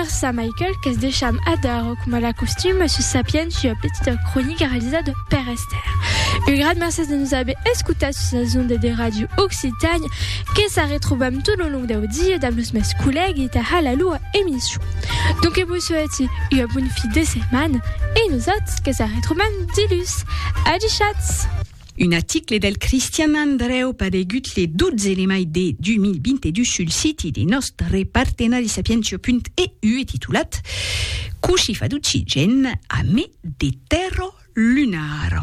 Merci à Michael qu'es deixam adar coma la costum a sus sapient ua petita cronica realizada de Père Esther. Un gran merci de nous haver escutat sus les ondes de Radio Occitanie que sa retrobam tout le long dau dia dam los mes collègues ta hala lua emission. Donc vos souhaite ua bonne fi de setmana e nosautres que sa retrobam dilus. Adi chats! Un aticle del Cristian Andrèu paregut le 12 de mai de 2022 sul siti de nòstre partenari Sapientio.eu e titulat Coshi fa d'occigen a me de tèrra lunar.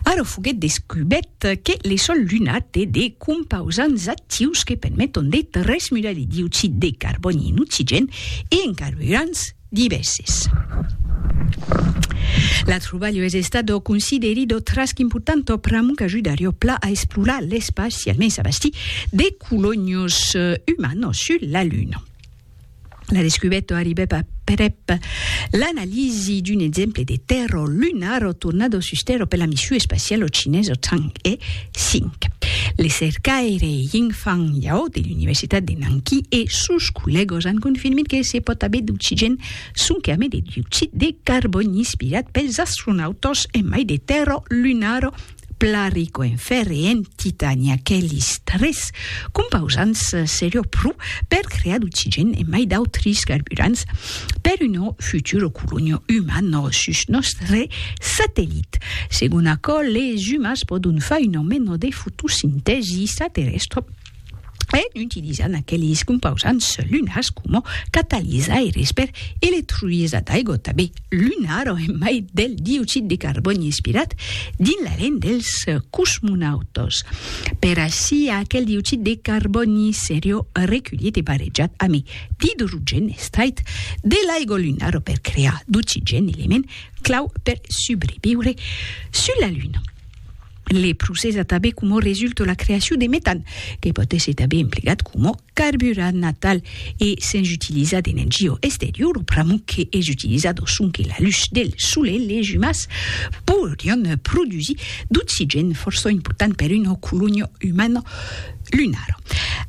Ara foguèt descubèt que le sòl lunar té de compausants actius que permeton de transmudar le dioxid de carbòni en occigen e en carburants divèses. L'atrobalho es estat o considerit o trasc important o pr'amor qu'ajudari o pla a esplorar l'espaci, almens a bastir de colonios umanos sus la Luna. La descubèta arribèt aprèp l'analisi d'un exemple de tèrra lunar o tornada sus tèrra per la mission espaciala chinesa Chang'e 5. Le cercaire Yingfang Yao de l'Universitat de Nanqui e sos collègos an confirmit que se pòt aver d'oxigèn sonque amé de dioxid de carbòni inspirat pels astronautas en mai de tèrra lunara plan rico en fèrre e en titani. Aqueles tres compausants seriá pro per crear d'oxigèn e mai d'autres carburants. per uno futuro colonio uman nos sus nòstre satellit. Segon aquò, les umans pòdon far un ameno de fotosintèsi extraterrèstra en utilizant aqueles compausants lunars coma catalizaires per electrolizar d'aigua tanben lunar o en mai del dioxid de carbòni inspirat dins la lent dels cosmonautas. Per aicí, aquel dioxid de carbòni seriá reculhit e barrejat amé D'idrogèn estrait de l'aigua lunara per crear d'oxigèn, element clau per subreviure sus la Luna. Le procès a tanben coma resultat la creacion de metan, que pòt èsser tanben emplegat coma carburant natal e sens utilizar d'energia exteriora, pr'amor que es utilizat sonque la lutz del solelh, les umans podrián produsir d'oxigèn fòrça important per una colonia umana Lunar.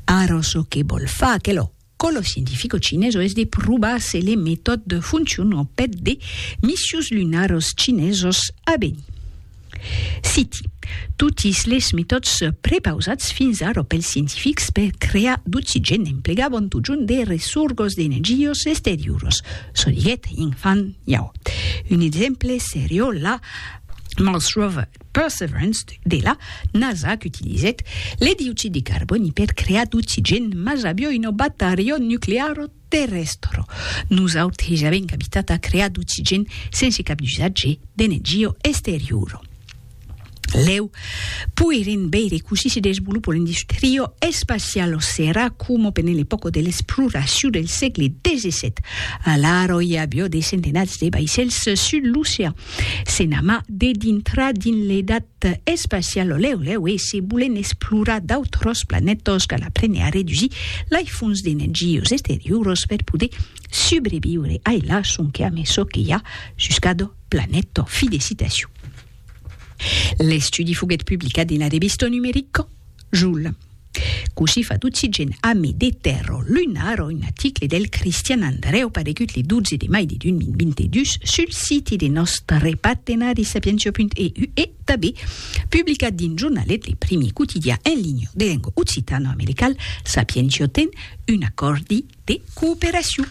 Ara çò que vòl far aquelo còlo scientifico chineso es de provar se le metòd foncion au pet de missions lunaros chinesos a venir. Citi. Totis les metòds prepausats fins ara pels scientifics per crear d'oxigèn emplegavon totjorn de ressorgos d'energios exterioros, çò diguèt Yingfan Yao. Un exemple serió la Mars Rover. Perseverance, de la NASA qu'utilizèt le dioxid de carbòni per crear d'oxigèn, mas avió un obat aerion nuclear terrèstre. Nos autres ja avèm capitat a crear d'oxigèn sense cap d'usatge d'energia exteriora. Lèu, poirem veire cossí se desvolopa l'industria espaciala o serà coma pendent l'epòca de l'exploracion del sègle xvii. Alara i avió de centenats de vaissèls sus l'ocean. Se n'ama de dintrar dins l'edat espaciala lèu lèu e se bolen explorar d'autros planètas cal aprene a redusir lai fons d'energias exteriuras per poder subreviure ai la sonque ame çò que i a sus cada planèta. Fi de citacion. L'estudi foguèt publicat dins la revista numerica Joule. Cossí fat occigen ame de terro lunaro un aticle del Cristian Andrèu paregut le 12 de mai de 2022 sul siti de nòstre partenari sapientia.eu e tanben publicat dins jornalet le primi quotidià en linha de lenga occitano-americal Sapientia ten un acòrdi de cooperacion